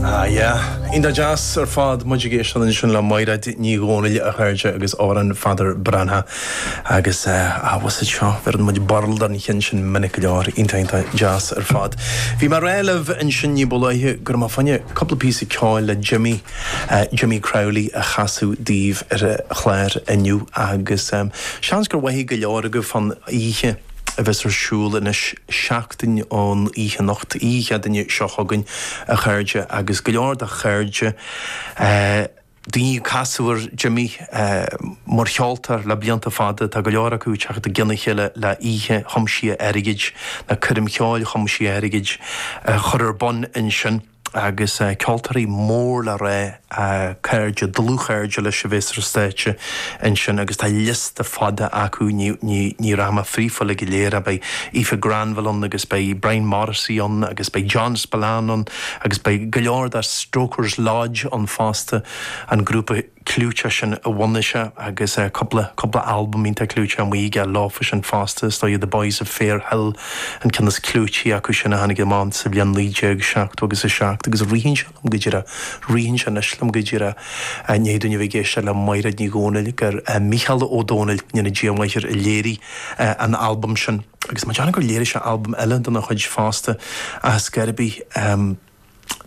Ah yeah. Iontach deas ar fad. Muid ag éisteacht ansin le Maighréad Ní Dhomhnaill, a chairde agus Amhrán Pheadar Breathnach. Agus ah bhfuil a fhios agat seo, bheireann muid birl don cheann sin minic go leor. Iontach iontach deas ar fad. Bhí mé ag rá libh ansin ní ba luaithe go raibh mé fá choinne cúpla píosa ceoil le Jimmy, Jimmy Crowley a chasadh daoibh ar an chlár inniu agus seans gur mhothaigh go leor agaibh fán oíche a bheas ar siúl anois. seachtain ón oíche anocht, oíche Chéadaoine seo chugainn, a chairde, agus go leor de chairde, daoine a casadh ar Jimmy mar cheoltóir le blianta fada, tá go leor acu ag teacht i gcionn a chéile le oíche thiomsaithe airgid, nó coirm cheoil thiomsaithe airgid, a chur ar bun ansin. agus ceoltóirí mór le rá, cairde, dlúthchairde leis a bheas ar an stáitse ansin agus tá liosta fada acu, ní rachaidh mé fríofa uilig go léir, beidh Aoife Granville ann agus beidh Brian Morrissey ann agus beidh John Spillane ann agus beidh go leor de Stokers Lodge ann fosta, an grúpa. clúiteach sin a bhunaigh sé agus cúpla, cúpla albam iontach clúiteach amuigh aige leofa sin fosta, is dóigh The Boys of Fair Hill an ceann is clúití acu sin a tháinig amach sa bhliain naoi déag seachtó agus a seacht agus ritheann sé liom go díreach, ritheann sé anois liom go díreach, i ndiaidh dúinn a bheith ag éisteacht le Maighréad Ní Dhomhnaill gur Mícheál Ó Domhnaill, go ndéana Dia a mhaith air, a léirigh an albam sin. Agus tá mé ag déanamh gur léirigh sé albam eile dena chuid fosta, ar scor ar bith,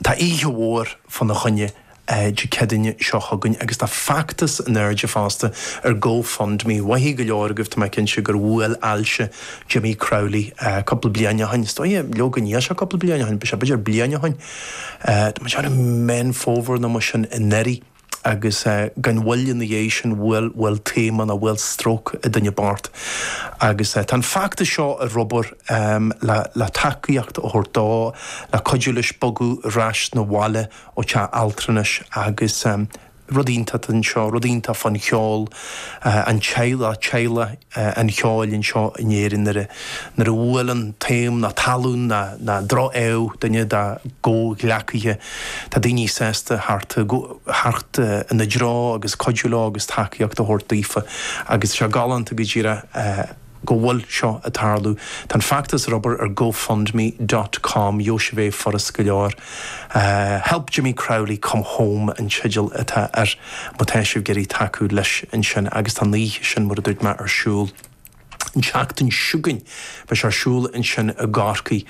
Tá oíche mhór fá na choinne Dé Céadaoine seo chugainn agus tá feachtas in airde fosta ar Go Fund Me. Mhothaigh go leor agaibh, tá mé cinnte, gur bhuail ailse Jimmy Crowley cúpla bliain ó shin, is dóigh, leoga níl sé cúpla bliain ó shin, b'fheidir bliain ó shin, tá mé ag déanamh Meán Fómhair nó mar sin anuraidh. agus gan mhoill ina dhiaidh sin bhuail taom nó bhuail stróc an duine bocht agus tá an feachtas seo ar obair le tacaíocht a thabhairt dó le cuidiú leis bogadh ar ais na bhaile ó teach altranais agus rud iontach anseo, rud iontach fán cheol, an teaghlach, teaghlach. an cheoil anseo in Éirinn nuair a bhuaileann taom nó tallann nó droch-ádh duine dá gcomhghleacaithe. Tá daoine sásta theacht ina dtreo agus cuidiú leo agus tacaíocht a thabhairt daofa agus tá sé galánta go díreach go bhfuil seo ag tarlú. Tá an feachtas ag obair ar gofundme dot com, gheobhaidh sibh é furast go leor. Help Jimmy Crowley Come Home an teideal atá air má tá sibh ag iarraidh tacú leis ansin agus tá an oíche sin mar a dúirt mé ar siúl an tseachtain seo chugainn beidh sé ar siúl ansin i gCorcaigh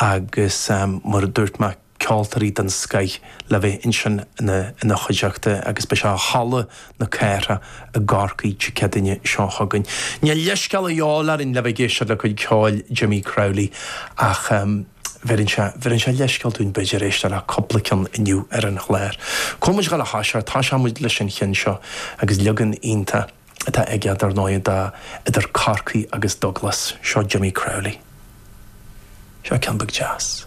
agus mar a dúirt mé ceoltóirí den scoith le bheith ansin ina chuideachta agus beidh sé i Halla na Cathrach i gCorcaigh Dé Céadaoine seo chugainn. Níl leithscéal a dhíobháil orainn le bheith ag éisteacht le cuid ceoil Jimmy Crowley ach. Bheireann sé leithscéal dúinn b'fhéidir éisteacht le cúpla ceann inniu ar an chlár. Tá muid ag dul a thoiseacht, toiseoidh muid leis an cheann seo agus leagan iontach atá aige dar ndóigh do idir Corcaigh agus Douglas. Seo Jimmy Crowley. Seo ceann beag deas.